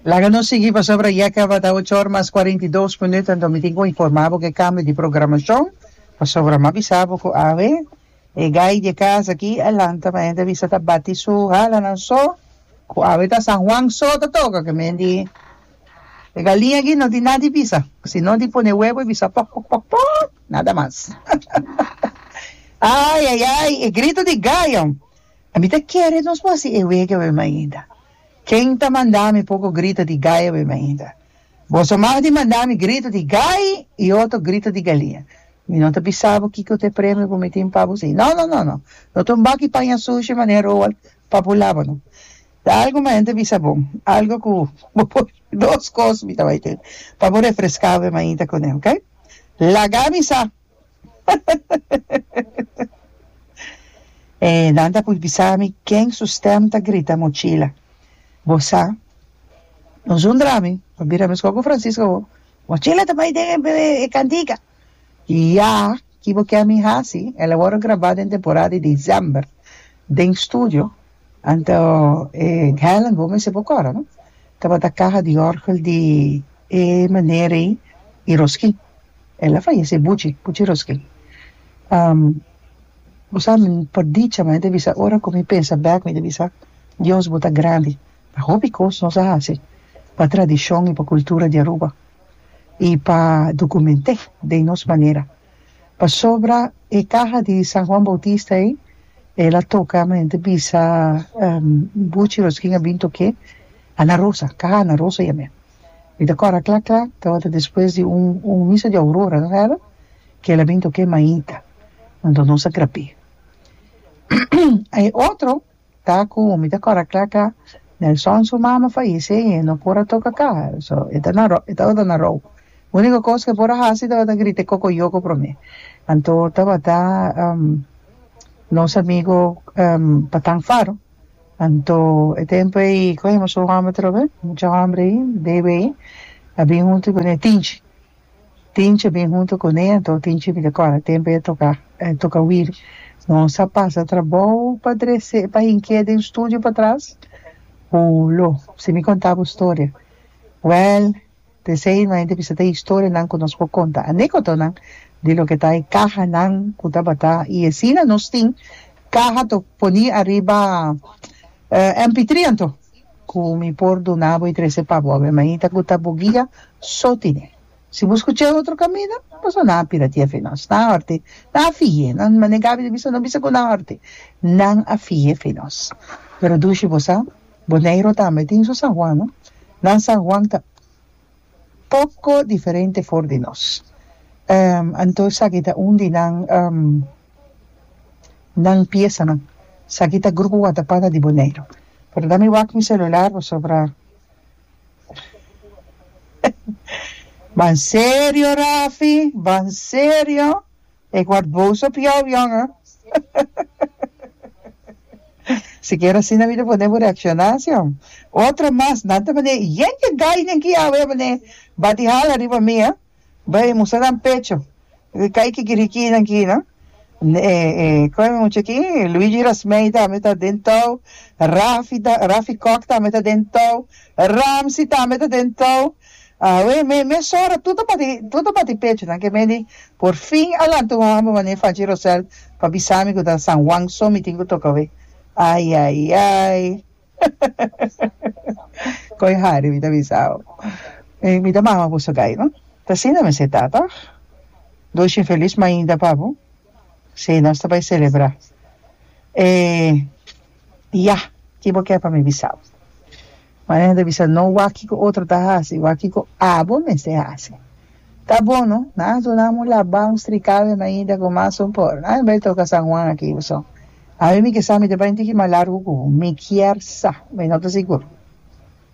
Laga nos sigui pasobra ya kaba ta ocho or mas cuarenta y dos minut anto mi tin cu informa bo cu e cambio di programacion pasobra mi a bisa bo cu awe e gai di e casa aki a lanta mi a hende a bisa ta bati su halanan so cu awe ta San Juan so ta toca cu mi a hende e galia aki no tin na di bisa sino di pone huevo y bisa pok pok pok pok nada mas ayayay e grito di gayo. A mi ta kere nos por haci e wega wei mainda. Ken ta manda mi poco grita di gaya wei mainda? Boso mas di manda mi grita di gai y otro grita di galia. Mi no ta bisa bo kico ta e premio cu mi tin pa bo si. No, no, no, no. No ta un baki paña sushi manera Roald pa bo laba, no. Ta algo mas, N ta bisa bo, algo cu bo por, dos cos mi ta bay tin pa bo refresca wei mainda cu ne, ok? Laga mi sa. E nan ta por bisa mi ken su stem ta grita mochila. Bo sa, nos un drami, pa bira mescor cu Francisca awo, Mochila ta bay den e cantica! Ya, ki bo kier mi haci? El a worde graba den temporada di december den studio. Anto e Helen bo mester bo kòrda no tabata kaha di òrgel di e manera ei i Roskin el a fayese Buchi Buchi Roskin um bo sa mi pa dicha mi ta bisa ora ku mi pensa bèk mi ta bisa Dios bo ta grandi pa hopi kos nos a hasi pa tradishon i pa kultura di Aruba i pa dokument'é den nos manera. Pasobra e kaha di San Juan Bautista ei el a toka mi ta bisa buchi los kin a bin tok'é Ana Rosa kaha Ana Rosa yam'e mi ta kòrda kla kla tabata despues di un un misa di aurora no era ke el a bin tok'é Maita anto nos a grap'é e otro Ta cu mi ta cora cla cla Nelson su mama fayece y e no por a toca caha so e ta na e tabata na rou unico cos que e por a haci tabata grita e coco yoco prome anto tabata nos amigo Patan Faro anto e tempo ey cogemos su homber atrobe mucha homber ey Davey a bin hunto y cune Tinchi Tinchi a bin huntu cu ne anto Tinchi a mira cora tempo ya toca a toca wiri nos a pasa trabou pa drece pa hink'e den studio patras ho lo si mi conta bo storia well desei no hay ta bisa ta historianan cu nos por conta anecotonan di loke ta e cahanan cu tabata y asina nos tin caha to poni ariba MP3 anto. Ku mi por duna bo i trese pa bo, a mi hermanita ku ta bo guia so tine. Si bo skucha e otro kaminda, bo so nan a pira tiefe nos. Nan a horti, nan a fihie. Nan mane Gabi ta bisa, no bisa ku nan a horti. Nan a fihie fi nos. Pero dushi bo sa, Boneiru tambe tin su San Juan, no? Nan San Juan ta. poco diferente for di nos. Anto esaki ta un di nan nan piesanan. Esaki ta Grupo Watapata di Boneiru. Pero dame wak mi celular pasobra Ba'n serio Rafi, ba'n serio. Ik word boos op jou jonge. Sikier asina mi ta pone bo reakshoná si ho. Otro mas nan ta manera i yen ke gai den ki awe a manera ba di hala riba mi a bai a mustra nan pecho e kai kikirikinan ki no. E e kon e mucha ki Luigi Rasmei tambe ta den tou Rafi ta Rafi Kok tambe ta den tou Ramsi tambe ta den tou. Awe, me mes ora tur ta bati tur ta bati pecho nan ke me di, Por fin a lanta un homber mane Fachi Rosel pa bisa mi ku ta San Juan so mi tin ku toka we. Ai ai ai. Koy hari mi ta bisao. Mi ta mama bo sogai no. Ta asina mester ta tòg. Doshi un felis mainta pa bo. Sei nos ta bai selebrá. E yah, ki bo ke pa mi bisao. Mañana ta bisa, No wak kiko otro ta hasi, wak kiko abo mester hasi. Ta bon no, nan a duna amu labá un strikal den Naida ku mas supor. Nan a bai toka San Juan aki Uson. Ami mi ke sa mi ta bai un tiki mas largu ku mi. Mi kier sa, mi no ta sigur.